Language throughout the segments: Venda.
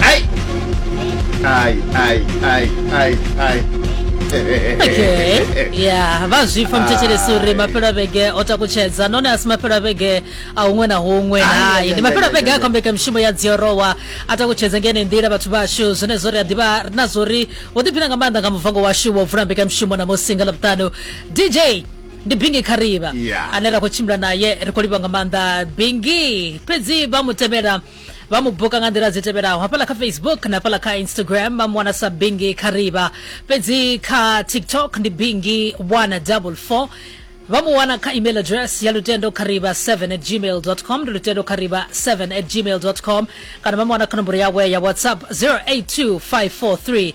¡Ay! ¡Ay, ay, ay, ay, ay! okay ya vha zwipfa Ah. muthetshelesi uri mafhelo a vhege o takutshedza nahone a si mafhelo a vhege a huṅwe na huṅwe hai ndi mafhelo a vhege a khombeka mishumo ya dziorowa a takutshedza ngene nḓila vhathu vhashu zwenezwo ri a ḓivha ri na zwo ri wo ḓiphina nga maanḓa nga muvango washu wo vula mbekamishumo na musi nga ḽavhuṱanu dj ndi bingi khariba Yeah. ane ra khou tshimbila naye ri khou livha nga maanḓa bingi fhedzi vha mu temela vha mu buka nga nḓila dzi tevhelaho hafhaḽa kha facebook na hafhaḽa kha instagram vha mu wana sa bingi khariba fhedzi kha tiktok ndi bingi 144 vha mu wana kha email address ya lutendo khariba 7 at gmail com ndi lutendo khariba 7 at gmail com kana vha mu wana kha nomboro yawe ya whatsapp 082 543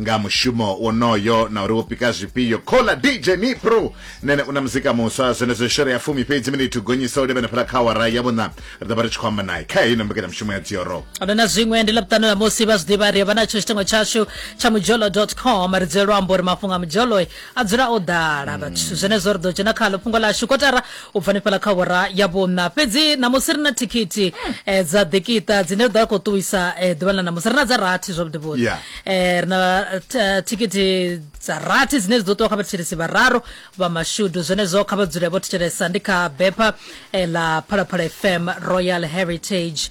nga mushumo wonoyo na uri wo pika zwifhio khola dj nipro nene u na muzika muswa zwenezwo shere ya fumi fhedzi minithu gonyisa u levhena fhela kha awara ya vhuṋa ri ḓo vha ri tshi khou amba naye kha heino mbekanyamushumo ya dzioro ndo na zwiṅwe ndi ḽaṱanu ḽa musi vha zwiḓivha ri vha natsho tshitengo tshashu tsha mujolo com ri dzulelwa amba uri mafhungo a mujolo a dzula o ḓala vhathu zwenezwo ri ḓo dzhena khalo fhungo lashu kotara u bva nifhala kha wara ya vhunna fhedzi namusi ri na thikhithi um eh, dza ḓikiṱa dzine ri ḓo ya khou ṱuwisa um eh, ḓuvha ḽa namusi ri na dza rathi zwavhuḓi vhuḓi yeah. um ri na thikhithi dza rathi dzine dzi ḓo ṱuwa kha vhathetshelesi vhararu vha mashudu zwenezwo kha vha dzule vho thetshelesa ndi kha bepha um ḽa phalaphala fm royal heritage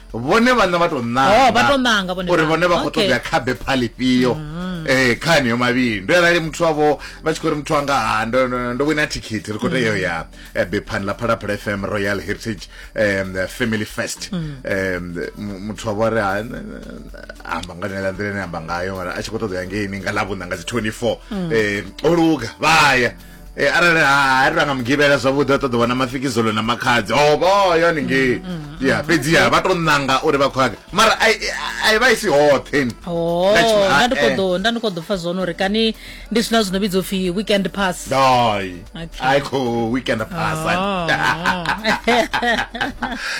vhone vhana vha tou ṋanga oh, uri vhone vha khou ṱoḓa kha bepha ḽifhio mm. eh kha niyo mavhili ndo arali muthu wavho vha tshi khou ri muthu wanga ha ndo ndo wina thikhithi ri khou tea ya eh, bephani ḽa phalaphala fm royal heritage um family fest um muthu wavho ri amba nga nela nḓila ine amba ngayo mara a tshi khou ṱoḓa ya ngeini nga ḽavhuṋa nga dzi 24 um o luga vha ya arali ha ri ranga mugivhela zwavhuḓi a ṱoḓa wana mafikizolo na makhadzi o vho yo haningei mm, mm, mm. ya fhedzi ya vha to ṋanga uri vha khou yaga mara a vha i si hoṱhe oh, nda ndi khou ḓo nda ndi khou ḓo pfa zwone uri kani ndi zwina zwino vhidzo pfhi weekend pass doi ai khou weekend pass oh.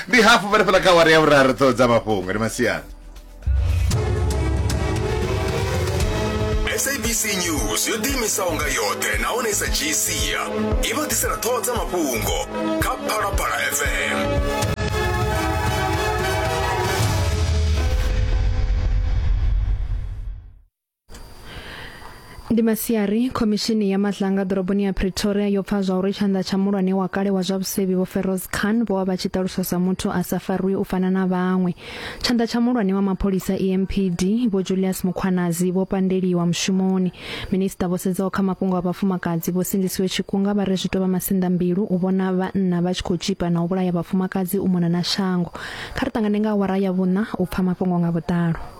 ndi hafu vha ri fela kha wari ya vhuraru ṱhoho dza mafhungo ndi masiari sabc news yo ḓiimisaho nga yoṱhe nahone i sa dzhii sia i vha ḓisela ṱhoho dza mafhungo kha phalaphala fm ndi masiari khomishini ya matlanga ḓoroboni ya pretoria yo pfa zwa uri tshanḓa tsha mulwane wa kale wa zwa vhusevhi vho feroz khan vho vha vha tshi ṱaluswa sa muthu a sa farwi u fana na vhaṅwe tshanḓa tsha mulwane wa mapholisa empd vho julius mukhwanazi vho pandeliwa mushumoni minista vho sedzaho kha mafhungo a vhafumakadzi vho sindisiwe tshikunga vha re zwi tou vha masinḓa mbilu u vhona vhanna vha tshi khou tshipa na u vhulaya vhafumakadzi u mona na shango kha ri ṱangane nga awara ya vhuṋa u pfa mafhungo nga vhuḓalo